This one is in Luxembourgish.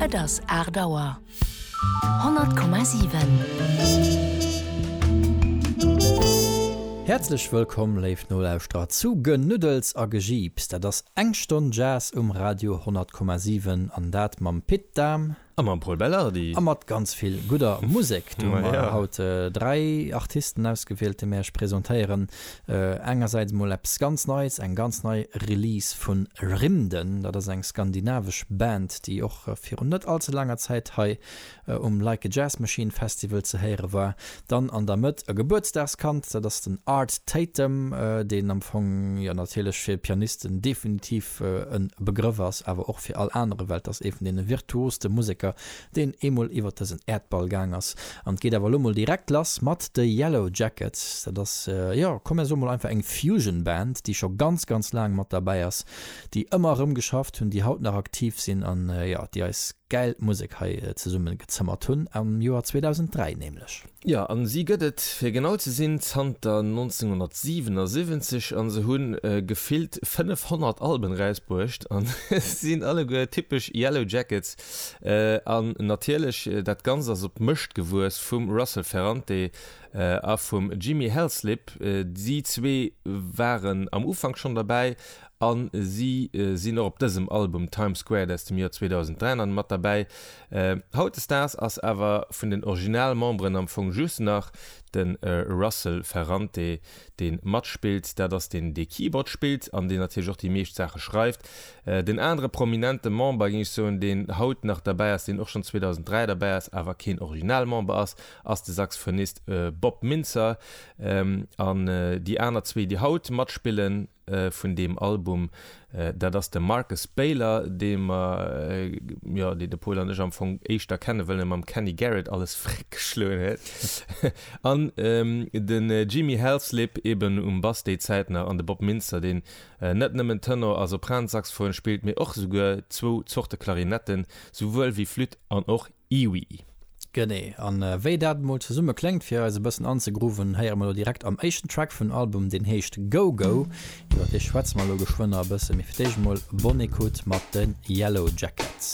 Et ass aacht Auer. 100,7. Häerzlech wëllkomm, léif Nolauschterer, zu Genuddels a Gejiips. Dat ass eng Stonn Jazz um Radio 100,7, an dat mam Pit Dahm. A mam Pol Bellardi. A mat ganz vill gudder Musek. Do hu mer haut dräi Artisten ausgewielt, déi mir iech presentéieren. Engersäits emol eppes ganz Neies, eng ganz nei Release vu Rymden. Dat ass eng skandinavesch Band, déi och virun net all ze laanger Zäit hei um Like a Jazz Machine Festival ze héiere war. Dann an der Mëtt e Gebuertsdagskand, dat ass den Art Tatum, deen am Fong jo natierlech fir Pianisten definitiv e Begrëff ass, awer och fir all anere, well et ass ee vun deene virtuoste Museker, deen eemol iwwert dësen Äerdball gaang ass. An et geet awer elo mol direkt lass mat de Yellowjackets. Dat ass, jo, komm mir soe mol einfach eng Fusion-Band, déi scho ganz, ganz laang mat derbäi ass déi ëmmer erëm geschafft hunn, déi haut nach aktiv sinn an, jo, déi eis gäil Musek hei zesumme gezëmmert hunn, am Joer 2003 nämlech. Jo, a si gëtt et, fir genau ze sinn, zanter 1977 a se hu gefillt 500 Alben erausbruecht a sinn alleguer typesch Yellow Jackets. An natierlech, dat Ganzt ass op d'Mëscht gewuess vum Russel Ferrante a vum Jimmy Helslip. Si zwee waren am Ufank schonn derbäi a si sinn och op dësem Album Times Squared aus dem Joer 2003 nach mat derbäi. Hautdesdaags ass awer vun den Originalmemberen am Fong just nach de Russel Ferrante, dee matspillt, dat ass deen, dee Keyboard spillt an deen natierlech och déi meescht Saache schreift. Den anere prominente Member, géing ech soen, deen haut nach derbäi ass, deen och schonn 2003 derbäi ass, awer keen Originalmember ass, ass de Saxophonist Bob Mintzer an déi aner zwee déi haut matspillen vun deem Album dat ass de Marcus Baylor dee mer jo dee de Pol an ech am Fong éischter kennen well en mam Kenny Garrett alles vréck geschloen huet an de Jimmy Halslip eben um Bass déi Zäit nach an de Bob Mintzer deen net nëmmen Tenor a Sopransaxophon spillt mee och esouguer zwou Zorte Klarinetten souwuel wéi Flütt an och Iwui. Genee. An wéi dat emol zesumme kléngt, fir eis e bëssen anzegrooven, héiere mer elo direkt am éischten Track vun Album, deen heescht Go Go. Iwwer dee schwätze mer elo geschwënn nach e bësse, mee fir d'éischt emol Bonne Écoute mat de Yellowjackets.